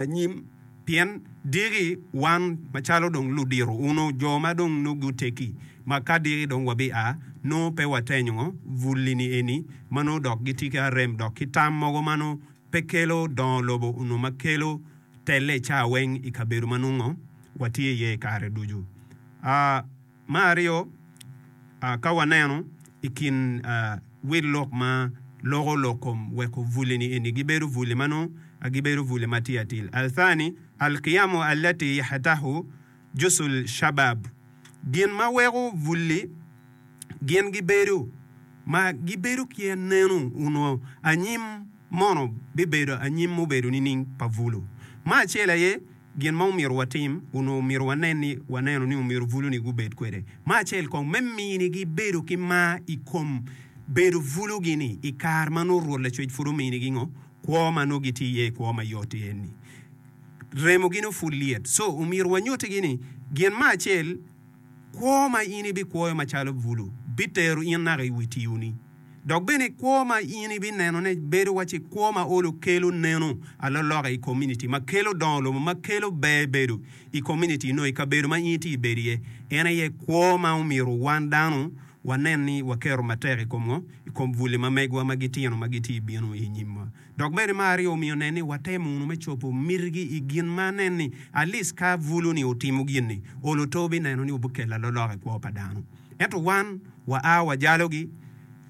anyim, pien diki wan macalo dong ludito uno jo ma dong nongo guteggi, ma ka diki dong wabia, nongo pe watenyo bulini eni ma nongo dok gitye ki arem dok ki tam mogo ma nongo pe kelo dongo lobo onongo ma kelo telle icaa weng ikabedo ma nongo watye iye ikare ducu. A. Me aryo, ka waneno i kin wil lok ma loko lok kom weko buli-ni eni gibedo buli ma nongo gibedo buli ma tye atir, Al-Thani, Al-Qiyamu Allati Yahatahu Jusul Shabab, gin ma weko buli gin gibedo ma gibedo ki anenu onwo anyim mono bibedo anyim mubedo nining pa bulu ma acel aye, Gin ma omyero watim, onongo omyero wanen ni waneno ni omyero buluni gubed kwede me acel kong me minigi bedo ki mar i kom bedo bulugi-ni i kare ma nongo Rwot Lacwec pud ominigi ngo? Kwo ma nongo gitye iye i kwo mayot-ti en ni, remogi nongo pud lyet. Co, omyero wanyutigi ni gin me acel, kwo ma in ibikwoyo macalo bulu bitero in naka i wi tioni. Dok bene kwo ma in ibinenone bedo waci kwo ma olo kelo neno aloloka i komuniti, ma kelo dongo lobo, ma kelo ber bedo i komuniti nyo i kabedo ma in itye ibedo iye. En aye kwo ma omyero wan dano wanen ni waketo matek i kom ngo? I kom buli ma megwa ma gitino ma gitye bino i nyimwa. Dok bene me aryo omiyo nen ni watemo wunu me cobo mitigi i gin ma anen ni at least ka bulu ni otimo gin ni olo to bineno ni obikelo alolok i kwo pa dano. Ento wan wa a wa jalo gi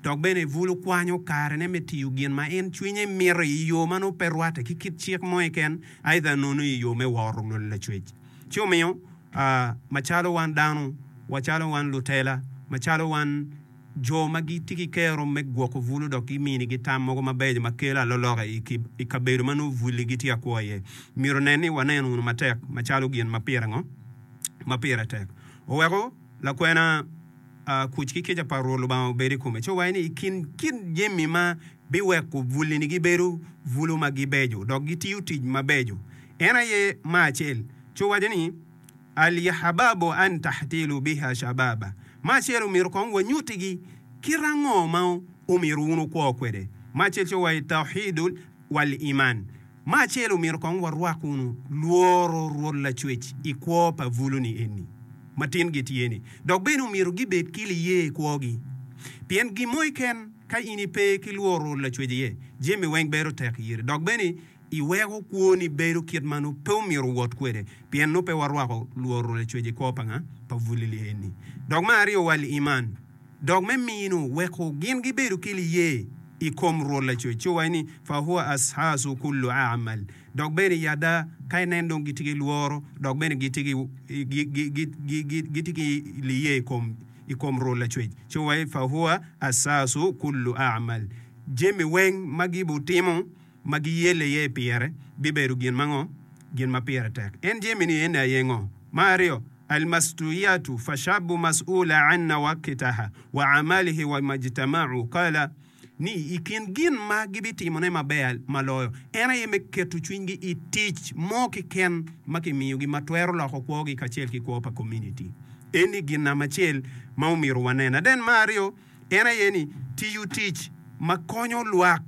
dok bene bulu kwanyo kare ne me tiyo gin ma en cwinye mito i yo ma nongo pe rwate ki kit cik mo keken aidha nonu i yo me woro lwel lacwec. Ci omiyo a macalo wan dano, wa calo wan lutela, macalo wan. Jo ma gitye ki kero me gwoko bul odok giminigi tam mogo mabeco ma kelo aloloka i kabedo ma nongo bulli gitye ka kwo iye. Myero onen ni waneno wunu matek macalo gin ma pire ngo? Ma pire tek. Oweko lakwena kuc ki kica pa Rwot Lubanga obed i kome ci owaco ni, I kin kit jami ma biweko bullini gibedo bulu ma gibeco dok gitiyo tic mabeco, en aye mar acel. Ci owaco ni, Alyahababu an tahtilu biha shababa, ma acel omyero kong wanyutigi kit ango ma omyero wun wukwo kwede, ma acel ce wa i tauhidul wal iman, ma acel omyero kong warwak wunu lworo Rwot Lacwec i kwo pa buluni eni ma tin gitye-ni, dok bene omyero gibed ki liye i kwogi, pien gin mo keken ka in ipe ki lworo Rwot Lacwec iye, jami weng bedo tek iri, dok bene. Iweko kwoni bedo kit ma nongo pe omyero owot kwede, pien nongo pe warwako lworo lacwec i kwo panga pa bulili eni. Dok me aryo, wal iman, dok me mino weko gin gibedo ki liye i kom Rwot lacwec, ci owaco ni, Fa huwa ashasu kullu a'mal, dok bene i ada ka inen dong gitye ki lworo, dok bene gitye ki gitye ki liye i kom i kom Rwot lacwec, ci owaco ni, Fa huwa ashasu kullu a'mal, jami weng ma gibitimo. ma giyelle iye i pire bibedo gin ma ngo? Gin ma pire tek. En jemi ni ene aye ngo? Ma aryo, Al-Mastuiyatu fashabu mas'ula anna wakitaha wa amalihi wa majtama'u kala, ni i kin gin ma gibitimo ne maber ma loyo, en aye me keto cwiny gi i tic mo ki ken ma ki miyo gi ma twero loko kwo gi kacel ki kwo pa community. Eni gin nam acel ma omyero wanen. Aden ma aryo. en aye ni tiyo tic ma konyo lwak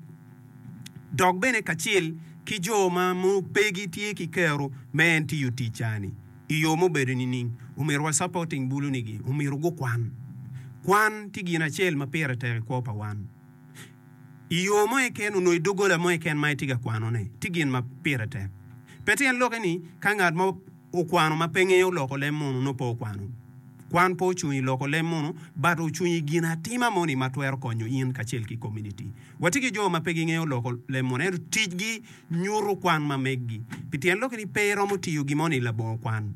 dok bene kacel ki jo ma nongo pe gitye ki kero me en tiyo tic ca-ni i yo mubedo nining? Omyero wa supporting bulunigi, omyero gukwan. Kwan tye gin acel ma pire tek i kwo pa wan. I yo mo keken onongo i doggola mo keken ma itye ka kwanone tye gin ma pire tek. Pe tyen lokke ni ka ngat mo Okwano ma pe ngeyo loko lem munu nongo pe okwano. Kwan pe ocung i loko lem munu, but ocung i ginatima moni ma twero konyo in kacel ki komuniti. Watye ki jo ma pe gingeyo loko lem munu, ento ticgi nyuto kwan ma meggi. Pi tyen lok ni pe iromo tiyo gin mo ni labongo kwan.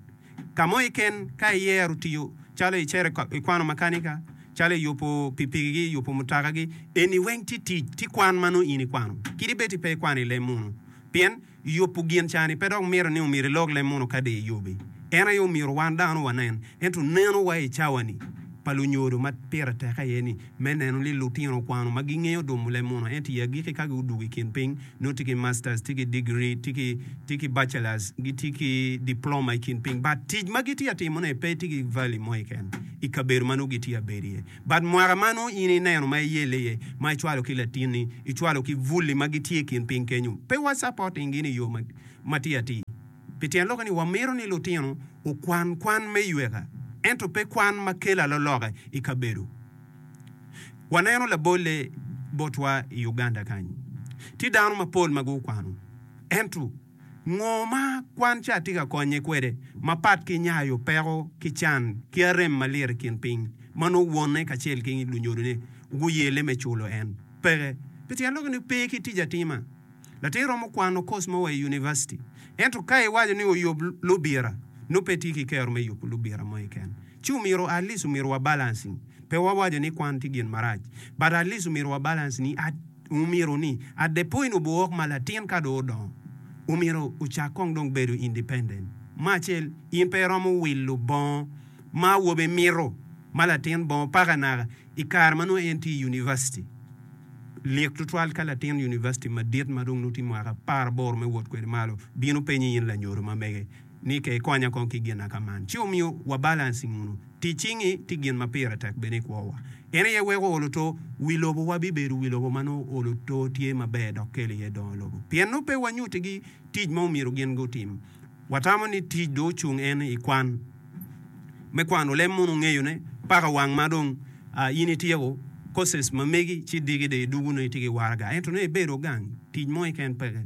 Ka mo keken, ka iyero tiyo calo icero i kwano makanika, calo i yubo pikipikigi, yubo mutakagi, eni weng tye tic, tye kwan ma nongo in ikwano. Kit ibed-di pe ikwano i lem munu. Pien. Yubu gin cani pe dok mito ni omyero ilok leb mono kadi iyubi. En aye omyero wan dano wanen. Ento neno wa i cawani pa lunyodo ma pire tek aye ni me neno ni lutino okwano ma gingeyo dumo leb mono ento i agiki ka gudugo i kin piny nongo tye ki masters, tye ki degree, tye ki tye ki bachelors, gitye ki diploma i kin piny but tic ma gitye atimo ne pe tye ki value mo keken i kabedo ma nongo gitye abedo iye. But mwaka ma nongo in ineno ma iyelle iye ma icwalo ki latinni, icwalo ki Vully ma gitye i kin piny kenyo, pe wa supporting gi ni yo ma tye atir. Pi tyen lokke ni wa mito ni lutino okwan kwan me yweka ento pe kwan ma kelo aloloka i kabedo. Wa neno labolle botwa i Uganda kany, tye dano ma pol ma gu kwano ento. Ngo ma kwan ca tye ka konye kwede mapat ki nyayo peko ki can ki arem malir i kin piny ma nongo wonne kacel ki lunyodone guyelle me culo en? Peke. Pi tyen lok ni pe ki tic atima. Latir romo kwano kos mo wa i univaciti. Ento ka iwaco ni oyub lubira, nongo pe itye ki kero me yubo lubira mo keken. Ci omyero at least omyero wa balance ni, pe wa waco ni kwan tye gin marac, but at least omyero wa balance ni at omyero ni at the point of wok ma latin ka dong odongo omyero ocak kong dong bedo independent me acel in pe iromo wilo bongo ma awobi mito ma latin bongo paka naka i kare ma nongo en tye i University. Lik tutwal ka latin University madit ma dong nongo tye mwaka apar aboro me wot kwede malo bino penyi in lanyodo ma mege Nike ikonya kong ki gin naka man ci omiyo wa balancing unu tic cingi tye gin ma pire tek bene i kwo wa en aye weko olo to wi lobo wa bi bedo wi lobo ma nongo olo to tye ma ber dok kelo iye dongo lobo pien nongo pe wa nyuti gi tic ma omyero gin gu tim wa tamo ni tic do ocung en i kwan me kwano lem mono ongeyo ne paka wang ma dong a in ityeko courses ma megi ci diki do idugune itye ki waraga ento nongo ibedo gang tic mo keken peke.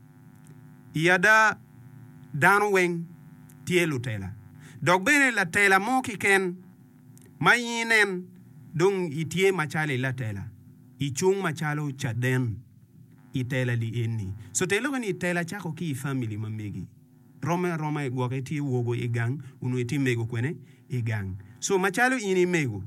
I ada, dano weng tye lutela. Dok bene latela mo kiken ma in inen dong itye macalo i latela, icung macalo caden i tela li eni. Sotelo bene i tela cako ki i famili ma megi. Romme aroma i gwoke tye wogo i gang onongo itye mego kwene i gang. So macalo in i mego,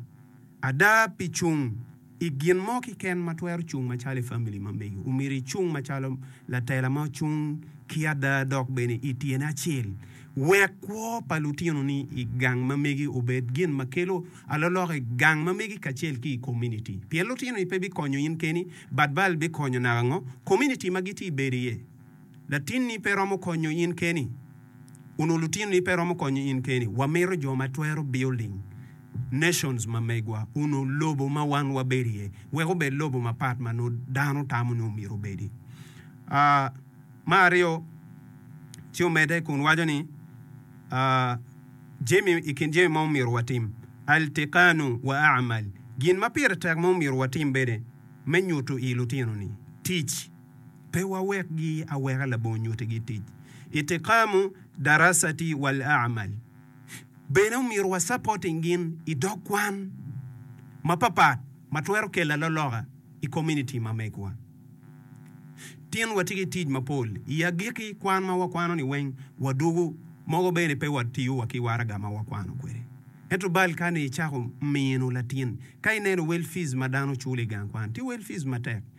ada pi cung i gin mo kiken ma twero cung macalo i famili ma megi, omyero icung macalo latela ma ocung ki ada dok bene i tyene acel. Wek kwo pa lutinoni i gang ma megi obed gin ma kelo alolok i gang ma megi kacel ki i kominiti. Pien lutinoni pe bikonyo in keni, bad bal bikonyo naka ngo kominiti ma gitye ibedo iye. Latinni pe romo konyo in keni. Onongo lutinoni pe romo konyo in keni. Wamito jo ma twero building nations ma megwa, onongo lobo ma wan wabedo iye, wek obed lobo mapat ma nongo dano tamo ni omyero obedi. Aa, me aryo, ci omedde kun waco ni, aa, jami, i kin jami ma omyero watim, Altikanu wa amal, gin ma pire tek ma omyero watim bene me nyuto i lutinoni tic. Pe wawekgi aweka labongo nyutigi tic. Itikamu darasati wal amal. Bene omyero wa supporting gin i dog kwan mapapat ma twero kelo aloloka i community ma megwa. Tin watye ki tic mapol i agiki kwan ma wakwano ni weng wadugu mogo bene pe wa tiyo wa ki waraga ma wakwano kwede. Ento bal ka ni icako mino latin ka ineno wel fees ma dano culo i gang kwan tye wel fees matek.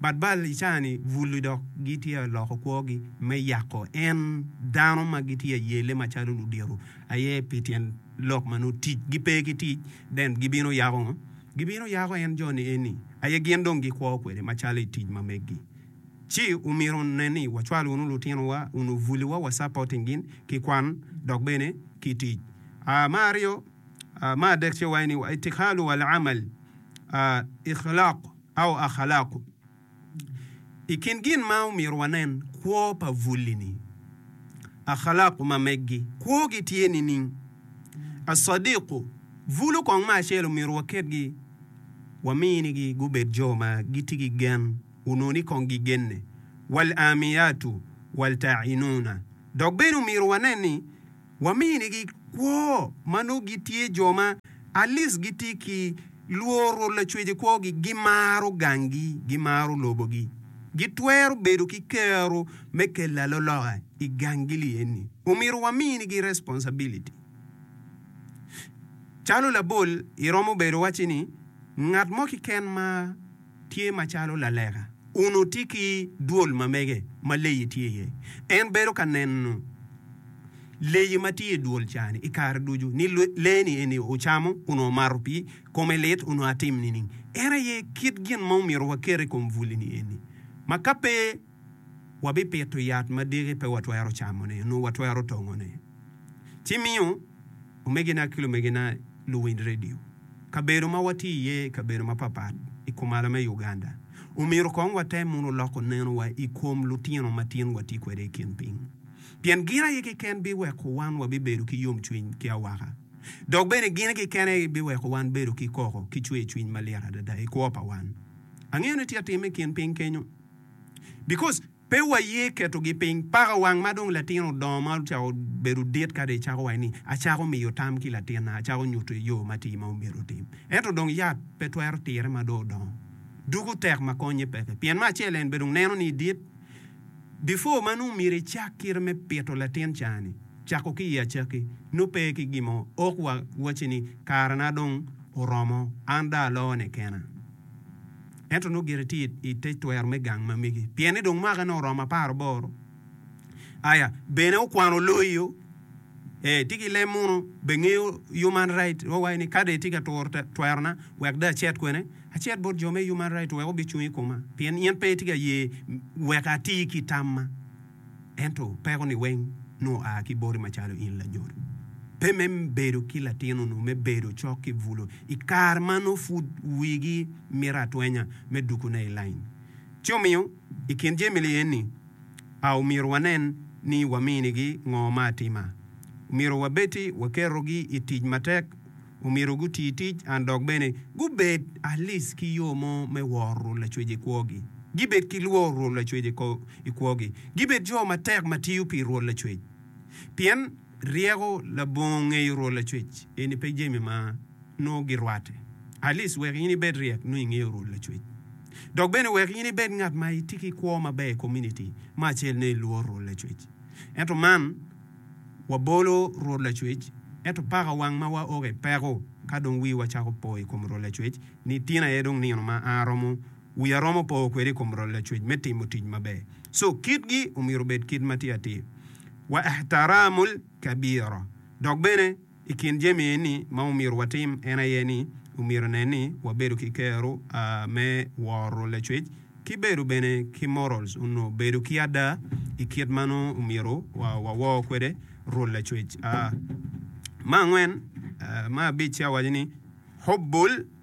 But bal i caa-ni bul-li dok gitye ka loko kwogi me yako en dano ma gitye ka yelle macalo ludito aye pi tyen lok ma nongo tic gipe ki tic den gibino yako ngo? Gibino yako en jo-ni eni aye gin dong gikwo kwede macalo i tic ma megi. Ci omyero ne ni wacwal wunu lutinowa onongo bul-li wa wa supporting gin ki kwan dok bene ki tic. Aa ma aryo aa ma adek ce waye ni wa itikhalu wal amal aa ikhlaq. Au Akhalaku. I kin gin ma omyero wanen kwo pa Vulli-ni, Akhalaku ma meggi, kwogi tye nining? Asadiku, Vulu kong ma acel omyero waketgi, waminigi gubed jo ma gitye ki gen, onongo ni kong gigenne. Wal-Amiyatu, Wal-Tainuna. Dok bene omyero wanen ni, waminigi kwo ma nongo gitye jo ma alic gitye ki lworo Lacwec i kwogi, gimaro ganggi, gimaro lobogi, gitwero bedo ki kero me kelo aloloka i ganggi li eni. Omyero waminigi responsibility. Calo labol, iromo bedo wacci ni ngat mo kiken ma. tye macalo laleka, onoti ki dwol ma mege ma leyi tye iye. En bedo ka neno leyi ma tye i dwol ca-ni i kare ducu, ni lee-ni eni ocamo onongo omato pii, kome lit onongo atim nining? En aye kit gin ma omyero waket i kom bwuli-ni eni, ma ka pe. wabipito yat ma diki pe watwero camone onongo watwero tongone. Ci miyo omegina ki lumegina luwiny redio. Kabedo ma watye iye kabedo mapatpat i kumalo me Uganda, omyero kong watem muno loko nenowa i kom lutino matin watye kwede i kin piny. Pien gin aye keken biweko wan wabibedo ki yomcwiny ki awaka. Dok bene gin keken aye biweko wan bedo ki koko ki cwercwiny malit adada i kwo pa wan. Angeyo ni tye atim i kin piny kenyo. Because pe wa ye keto gi piny. Paka wang ma dong latin odongo ma ocako bedo dit kadi icako waci ni acako miyo tam ki latin na acako nyuto i yo matir ma omyero otim. Ento dong yat pe twero tire ma dong odongo. Duku tek ma konye peke. Pien me acel en be dong neno ni idit. Before ma nongo myero icak kite me pito latin ca ni cako ki i acaki nongo pe ki gin mo ok wa waci ni kare na dong oromo an dong aloo ne kena. ento nongo gire tye i te twero me gang ma megi, pien ni dong mwaka nongo oromo apar aboro. Aya, bene okwano loyo. Ee, ti ki lem muno, bengeyo human right wa wayi ni ka dong itye ka turo twerona, wek dong acit kwene, acit bot jo me human right wek obicung i koma, pien in pe itye ka ye wek ati ki tamma. Ento peko-ni weng nongo aa ki boti macalo in lanyut. Pe me bedo ki latin onongo me bedo cok ki bulu i kare ma nongo pud wigi mito atwenya me dukune i lain. Ci omiyo, i kin jami li eni, a omyero wanen ni waminigi ngo me atima? Omyero wabed-ti wakerogi i tic matek, Omyero guti tic and dok bene gubed alic ki yo mo me woro rul lacwec i kwogi. Gibed ki lworo rul lacwec i kwogi. Gibed jo matek ma tiyo pi rul lacwec. Pien ryeko labongo ngeyo rul lacwec eni pe jami ma nongo girwate. Alic wek in ibed ryek nongo ingeyo rul lacwec. Dok bene wek in ibed ngat ma itye ki kwo maber i komuniti me acel nongo ilworo rul lacwec. Ento man. Wabolo Rwot Lacwec, ento paka wang ma waoke peko ka dong wiwa cako po i kom Rwot Lacwec ni tin aye dong nino ma an aromo wiya romo po kwede i kom Rwot Lacwec me timo tic maber. Co kitgi omyero obed kit ma tye atir, Wa ihtaramu l-kabira, dok bene, I kin jami eni ma omyero watim en aye ni omyero nen ni wabedo ki kero a me woro lacwec ki bedo bene ki morals onwo bedo ki ada i kit ma nongo omyero wawor kwede rwol lacwec a. Me angwen, me abic-ci awaco ni, Hubbul.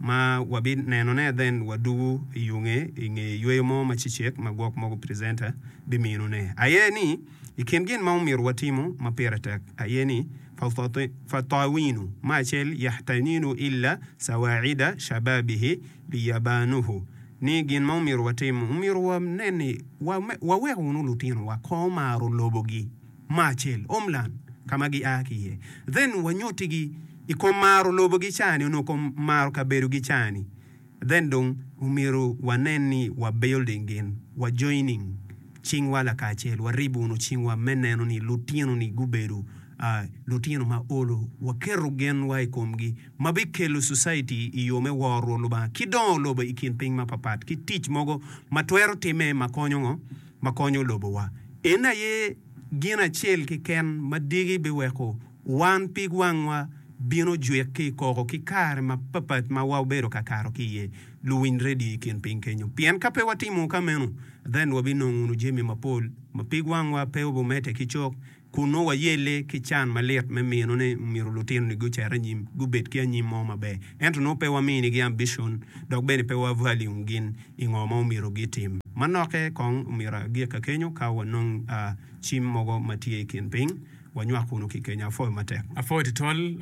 ma wabinenone then wadugu i yunge i nge yweyo mo ma cicek ma gwok mogo presenter biminone aye ni i kin gin ma omyero watimo ma pire tek aye ni Fatawinu ma acel yahtanilu illa sawaida shababihi li yabanuhu ni gin ma omyero watim omyero wanen ni waweko wunu lutinowa ko maro lobogi. mo acel, homeland, ka ma gia ki iye. Then wanyuti gi i kom maro lobo gi cani onongo kom maro kabedo gi cani. Then dong omyero wanen ni wa building gin, wa joining cingwa lakacel, wa ribuno cingwa me neno ni lutino ni gubedo lutino ma olo, wa keto gen wa i kom gi ma bi kelo society i yo me woro rwol Lubanga ki dongo lobo i kin piny ma papat ki tic mogo ma twero time ma konyo ngo? ma konyo lobowa. En aye gin acel keken ma diki biweko wan pig wangwa bino jwik ki i koko ki kare mapapat ma wabedo ka kato ki iye. Luwiny redio i kin piny kenyo, pien ka pe watimo ka meno, then wabinongo wunu jami mapol ma pig wangwa pe obimedde ki cok. Kun nongo wayelle ki can malit me mino ni omyero lutinoni gucer anyim, gubed ki anyim mo maber. Ento nongo pe waminigi ambicon, dok bene pe wa value gin i ngo ma omyero gitim. Manoke kong omyero agikka kenyo ka wanong a cim mogo ma tye i kin piny, wanywak kunu ki kenya. Apwoyo matek. Apwoyo tutwal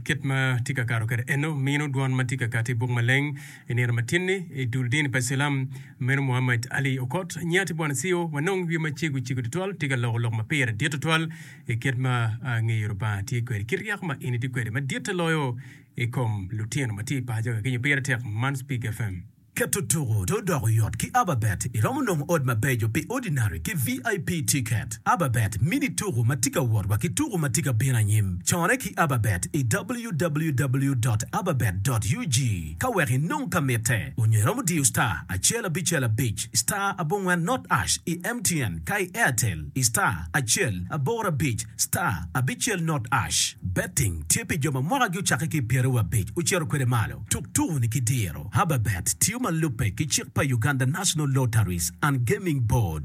kit ma tye ka kato kwede eno, mino dwon ma tye ka kati i buk maleng. I nino matin-ni, i dul dini pa Cilam meno Muhammad Ali okot nyi ati bwana Ciyo ma nongo wiye macego cego tutwal tye ka loko lok ma pire dit tutwal i kit ma ngeyo Lubanga tye kwede ki ryeko ma en itye kwede maditte loyo i kom lutino ma tye i paco kakinyo pire tek man Spig FM. Keto tuku to odoko yot ki Ababet iromo nongo ot mabeco pi Ordinary ki VIP ticket. Ababet mini tuku ma tye ka wot wa ki tuku ma tye ka bino anyim. Corre ki Ababet i www dot ababet dot ug ka wek inong ka mitte, onyo iromo diyo star acel abicel abic star abongwen not ash i MTN ka i Airtel i star acel aboro abic star abicel not ash. Betting tye pi jo ma mwaka gi ocakke ki i pyere wa abic ocito kwede malo. Tuk tuku ni ki diro. Ababet tiyo ma lubbe ki cik pa Uganda National Lotteries and Gaming Board.